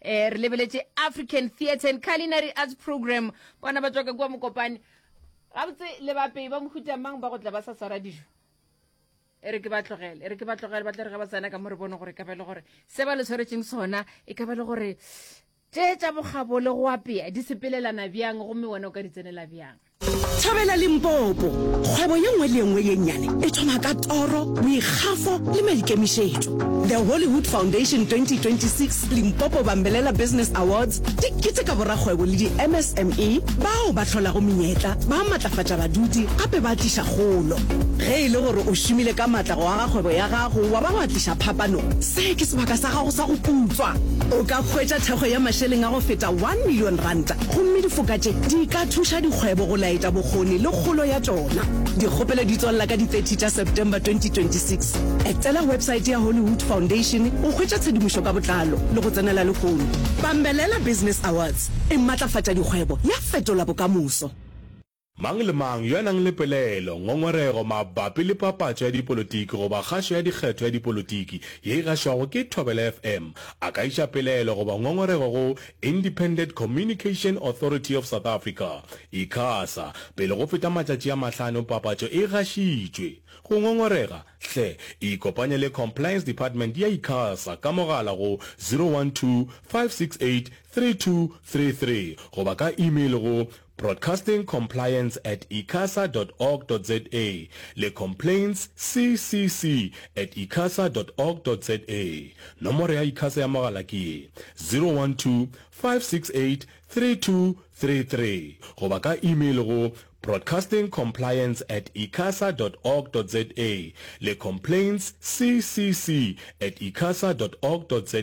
Eh, re lebeletše African Theatre and Culinary Arts Program kwana ba tswaka kwa Mokopane gabotse le bapei ba mohuta mang ba go tla ba sa swara dijo e re ke ba tlogele e re ke ba tlogele ba tla re ga ba tsena ka mo re bone gore e ka ba e le gore se ba le tshwaretseng sona e ka ba e le gore tše tša bogabo le go apea di sepelelana bjang gomme wena o ka di tsenela bjang Thabela Limpopo. Kgwebo ye nngwe le ye nngwe ye nnyane e thoma ka toro, boikgafo le maikemišetšo. The Hollywood Foundation 2026 Limpopo Bambelela Business Awards di keteka borakgwebo le di-MSME bao ba hlolago menyetla, ba matlafatša badudi gape ba tliša kgolo. Ge e le gore o šomile ka matla go aga kgwebo ya gago wa ba wa tliša phapano, se ke sebaka sa gago sa go putswa. O ka hwetša thekgo ya mašeleng a go feta one million ranta Gomme difoka tše di ka thuša dikgwebo go laetša bokgoni le kgolo ya tšona. Dikgopelo di tswalela ka di 30 tša September 2026. Etela websaete ya Hollywood Foundation go hwetša tshedimošo ka botlalo le go tsenela lehono. Bambelela Business Awards e matlafatša dikgwebo ya fetola bokamoso. Mang le mang yo a nang le pelaelo, ngongorego, mabapi le papatšo ya dipolotiki goba kgašo ya dikgetho ya dipolotiki ye e gašwago ke Thobela FM a ka iša pelaelo goba ngongorego go Independent Communication Authority of South Africa, Icasa, pele go feta matšatši a mahlano papatšo e gašitšwe. Go ngongorega, hle ikopanye le Compliance Department ya Icasa ka mogala go 012 568 3233 goba ka email go Broadcasting Compliance at icasa dot org dot za le Complaints CCC at icasa dot org dot za. Nomoro ya Icasa ya mogala ke ye, 012-568-3233 goba ka email go Broadcasting Compliance at icasa dot org dot za le Complaints CCC at icasa dot org dot za.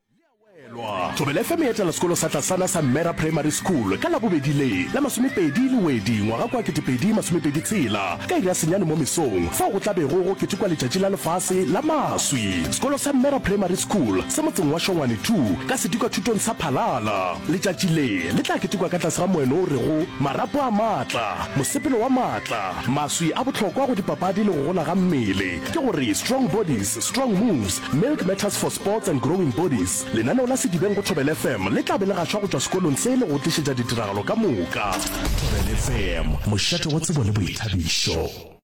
Thobela FM e etela sekolo sa tlasana sa Mmera Primary School ka Labobedi le la masomepedi le wedi ngwaga kwa ketepedi masomepedi tshela ka iri ya senyane mo mesong fao go tlabego go ketekwa letšatši la lefase la maswi. Sekolo sa Mmera Primary School se motseng wa Shongwane 2 ka sedikwathutong sa Phalala. Letšatši le le tla ketekwa ka tlase ga moeno o rego Marapo a Maatla, Mosepelo wa Maatla, Maswi a Bohlokwa go Dipapadi le go Gola ga Mmele, ke go re Strong Bodies, Strong Moves, Milk Matters for Sports and Growing Bodies, lenaneo la Sedibeng go Thobela FM le tla be le gašwa go tšwa sekolong se le go tlišetša ditiragalo ka moka. Thobela FM, mošate wa tsebo le boithabišo.